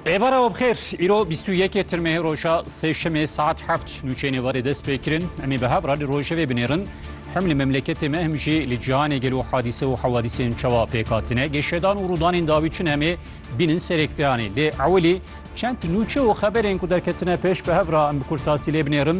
Êvara we bixêr, îro bîst û yekê tirmehê roja sêşemê saet heft nûçeyên êvarê dest pê kirin. Em ê bi hev re li rojevê binêrin. Hem li memleketê me hem jî li cîhanê gelo hadîse û hewadîsên çawa pêk hatine. Geşedan û rûdanên dawî çin em ê bînin serê ekranê. Lê ewilî çend nûçe û xeberên ku derketine pêş bi hev re em bi kurtasî lê binêrin.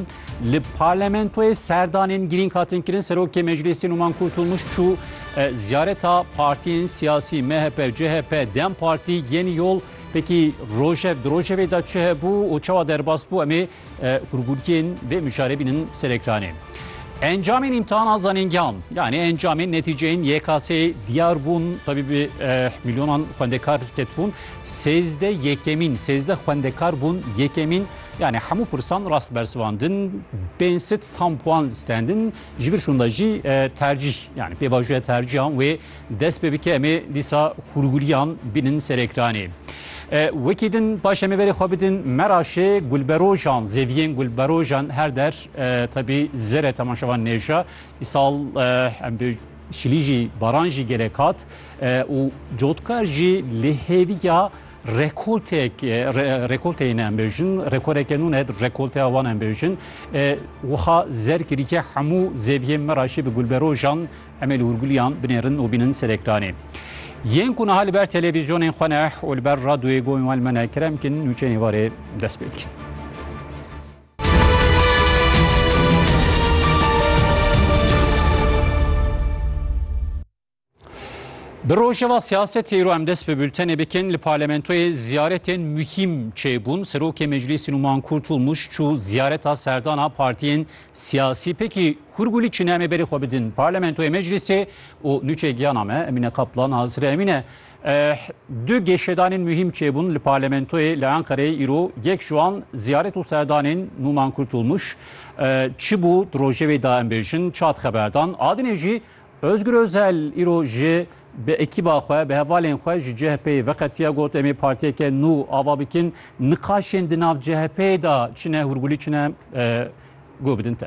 Li parlamentoyê serdanên girîng hatin kirin. Serokê Meclîsê Numan Kurtulmuş çû e, ziyareta partiyên siyasî MHP, CHP, Dem Partî, Yenî Yol pekî rojev di rojevê de çi hebû û çawa derbas bû em ê e, hûrgûrkiyên vê mijarê bînin ser ekranê. Encamên îmtihana zanîngehan yanî encamên netîceyên YKS'ê diyar bûn tabî bi e, milyonan xwendekar ketbûn. Sêzde yekemîn, sêzde xwendekar bûn yekemîn Yanî hemû pirsan rast bersivandin, bên sit tam puan stendin, ji vir şûnda jî tercîh yanî pêvajoya tercîhan wê dest pê bike em ê dîsa hûrgûriyan bînin ser ekranê. Wekî din baş em ê verê xwe bidin meraşê gulberojan zêdiyên gulberojan her der tebî zere temaşevan nêja îsal em bi şilî jî baran jî gelek hat û cotkar jî li hêviya Rekoltek rekolteyê ne em bêjin rekoreke nû ne rekolteya wan em bêjin wiha zer kirîke hemû zeviyê me raşî bi gulberojan emê li hûrguliyan binêrin û bînin ser ekranê. Yên ku niha li ber televîzyonên xwe ne û li ber radyoyê goyên wan me ne kerem kin nûçeyên varê dest pê dikin. Bi rojeva siyasetê îro em dest bi bültenê bikin li parlamentoyê ziyaretên muhîm çêbûn. Serokê Meclîsî Numan Kurtûl Muş çû ziyareta serdana partiyên siyasî pekî Hurgulî çine em ê berê xwe bidin parlamentoyê meclîsê û nûçê giyana me Emîne Kaplan hazir e Emîne. Eh, du gêşedanên muhîm çêbûn li parlamentoyê li Enqereyê îro yek ji wan ziyaret û serdanên Numan Kurtûl Muş eh, çi bû di rojevê da em bêjin çat xeberdan adinê jî Ozgur Ozel îro ji bi ekîba xwe, bi hevalên xwe ji CHP'ê veqetiya got em ê partiyeke nû ava bikin, niqaşên di nav CHP'ê de çi ne hûrgulî çi ne guh bidin te.